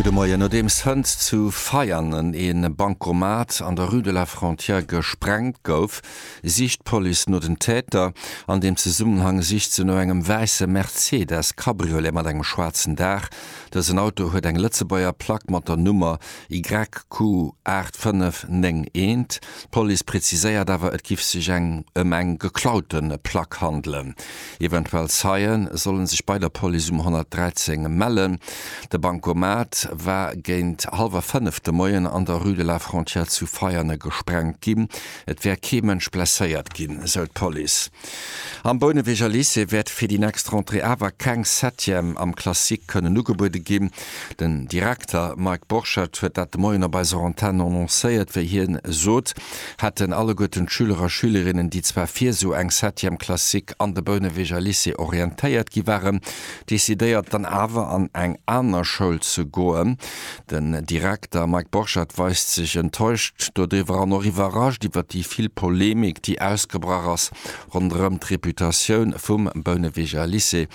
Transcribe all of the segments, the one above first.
Gudde Moien. Nodeems hënt zu Veianen ee Bancomat an der Rue de la Frontière gesprengt gouf, sicht d'Police no den Täter. An deem Zesummenhang sicht se no engem wäisse Mercedes Cabriolet mat engem schwaarzen Daach. Dësen Auto huet eng Lëtzebuerger Plack mat der Nummer YQ 8591. D'Police preziséiert awer, et giff sech eng ëm eng geklaute Plack handelen. Eventuell Zeie solle sech bei der Police um 113 mellen. De Bankomat war géint hallwer fënnef de Moien an der Rue de la Frontière zu Veianen gesprengt ginn. Et wär kee Mënsch blesséiert ginn, esou d'Police. Am Bouneweger Lycée wäert fir déi nächst Rentrée awer keng Septième am Classique kënnen ugebuede ginn. Den Direkter Mike Borchert huet dat de Moien op eiser Antenn annoncéiert. Wéi hien sot, hätten alleguerten d'Schüler a Schülerinnen, déi zwar fir esou eng Septième Classique an de Bouneweger Lycée orientéiert gi waren, decidéiert, dann awer an eng aner Schoul ze goen. Den Direkter Mike Borchert weist sech enttäuscht doriwwer an och iwwerrascht iwwer déi vill Polemik, déi ausgebrach ass ronderëm d'Reputatioun vum Bouneweger Lycée.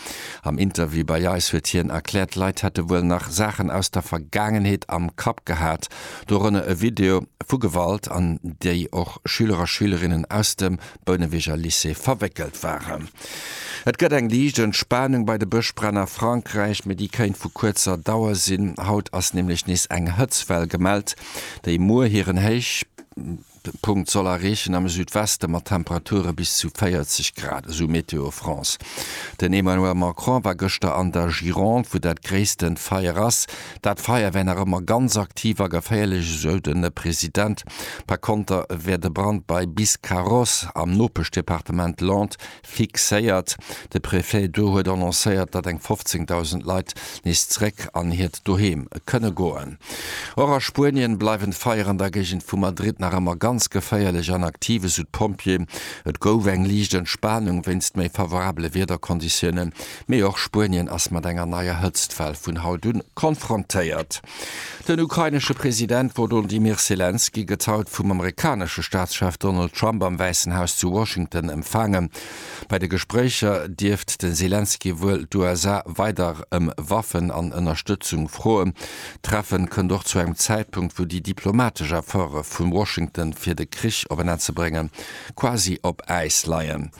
Am Interview bei eis huet hien erkläert, d'Leit hätte wuel nach Saachen aus der Vergaangenheet am Kapp gehat, dorënner e Video vu Gewalt, an déi och Schüler a Schülerinnen aus dem Bouneweger Lycée verwéckelt waren. Et gëtt eng liicht Entspanung bei de Bëschbränn a Frankräich, mee déi kéint vu kuerzer Dauer sinn. Haut ass nämlech nees eng Hëtzwell gemellt, déi muer hiren Héichpunkt soll erreechen am Südweste mat Temperature bis zu 40 Grad, esou Météo France. Den Emmanuel Macron war gëschter an der Gironde, wou dat gréissten Feier ass. Dat Feier wär nach ëmmer ganz aktiv a geféierlech, esou de President. Par konter wär de Brand bei Biscarrosse am Nopeschdepartement Land fixéiert. De Prefet do huet annoncéiert, datt eng 15.000 Leit nees zeréck an hiert Doheem kënne goen. Och a Spuenien bleiwen d'Feier an der Géigend vu Madrid nach ëmmer ganz geféierlech an aktiv, esou d'Pompjeeën. Et gouf eng liicht Entspanung wéinst méi favorabele Wiederkonditioune Mee och Spuenien ass mat enger neier Hëtztwell vun haut un konfrontéiert. Den ukrainesche President Wolodymyr Selenskyj gëtt haut vum amerikanesche Staatschef Donald Trump am Wäissen Haus zu Washington empfaangen. Bei de Gespréicher dierft de Selenskyj wuel d'USA weider ëm Waffen an Ënnerstëtzung froen. D'Treffe kënnt och zu engem Zäitpunkt, wou déi diplomatesch Efforte vu Washington fir de Krich op en Enn ze bréngen, quasi op Äis leien.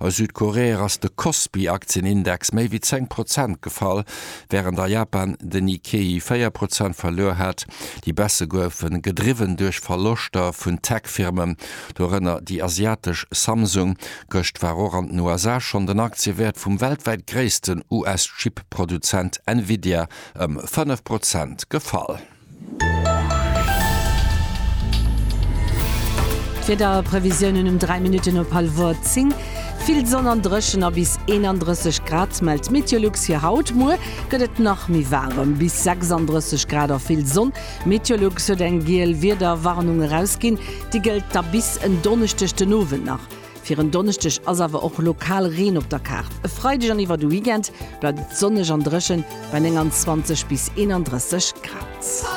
A Südkorea ass de Kospi-Aktienindex méi wéi 10 Prozent gefall, wärend a Japan den Nikkei 4 Prozent verluer hat. Déi Baisse goufe gedriwwen duerch Verloschter vun Tech-Firmen, dorënner déi asiatesch Samsung. Gëscht war och an den USA schonn den Aktiewäert vum weltwäit gréissten US-Chip-Produzent Nvidia ëm 5 Prozent gefall. D'Wiederprevisiounen um 3 Minutten op hallwer 10, Vill Sonn an dréchen a bis 31 Grad mellt d'Meteolux fir haut. Muer gëtt et nach méi waarem, bis 36 Grad a vill Sonn. D'Meteolux huet eng giel Wiederwarnung erausginn, déi gëllt da bis en Donneschdeg den Owend nach. Fir en Donneschdeg ass awer och lokal Reen op der Kaart. E Freideg an iwwer de Weekend bleift et sonneg an dréchen bei 29 bis 31 Grad.